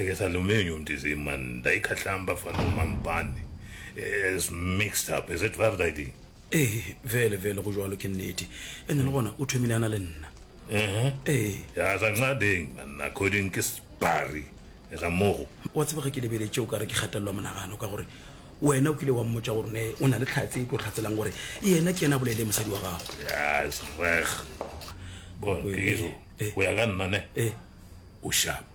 Ngesalumeni umtizim man ndayikhahlamba fana umampane is mixed up is it ba riding ee vele vele go jwalo ke nnete ene le gona o thomile ana le nna ee ya sa nxadeng man according ke sbari ga mogo wa tseba ge ke lebeletše o ka re ke kgatelelwa monagano ka gore wena o kile wa mmotsa gore ne o na le tlhatse e tlo tlhatselang gore yena ke yena a bolele mosadi wa gago yes reg bon ke iso go ya ka nna ne o sharp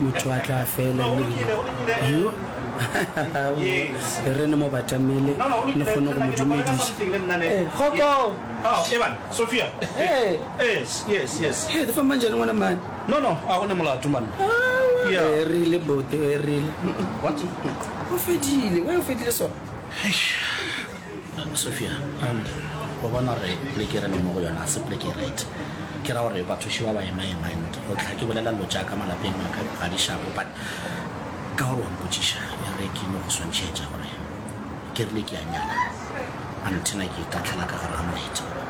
motho a tla fela re ne mo batamele le kgone go mo dumediša manjane ngwana mane no no a gone molato mane erile bote erile o fedile o fedile sona Sophia, O bona gore pleke e re leng mo go yona ga se pleke e right. Ke ra gore bathoši ba ba ema-ema and go tla ke bolela dilo tša ka malapeng a ka ga di šapo but ka gore wa mpotšiša ya re ke no go swantšhetša gore ke rile ke a nyala antenna ke itatlhela ka gare ga moetse gore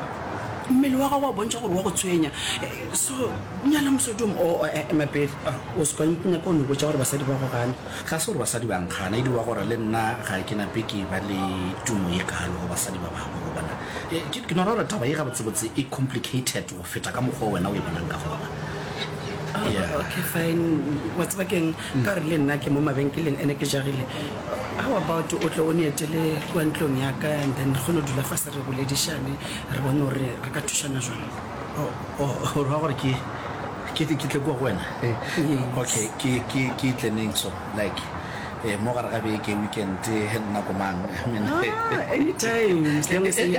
mmele wa gago wa bontšha gore wa go tshwenya so nyala mosadi o mo o eme pele o se ka nyaka o no botša gore basadi ba go gane. Ga se gore basadi ba nkgana, e dirwa gore le nna ga ke na pe ke ba le tumo ye kalo go basadi ba bangwe, go bona. Ke, ke no ra gore taba ye gabotsebotse e complicated go feta ka mokgwa wo wena o e bonang ka gona. Oh, yeah. Okay, fine. Wa tseba keng, ka gore le nna ke mo mabenkeleng ene ke jagile. How about o tle o ne etele kwa ntlong ya ka and then re kgone go dula fa se re boledišane, re bone gore re ka thušana jwang. o ra gore ke ke ke tle kwa go wena okay ke ke ke tleneng so like eh mo gare ga beke weekend he nna ko mang i mean ah, anytime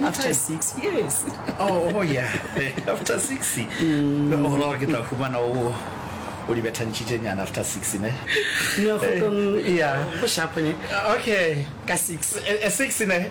after 6 yes oh oh yeah after 6 mm. o ra gore ke tla fumana o o di bethantšhitše nyana after six ne ya okay ka six eh, eh, six ne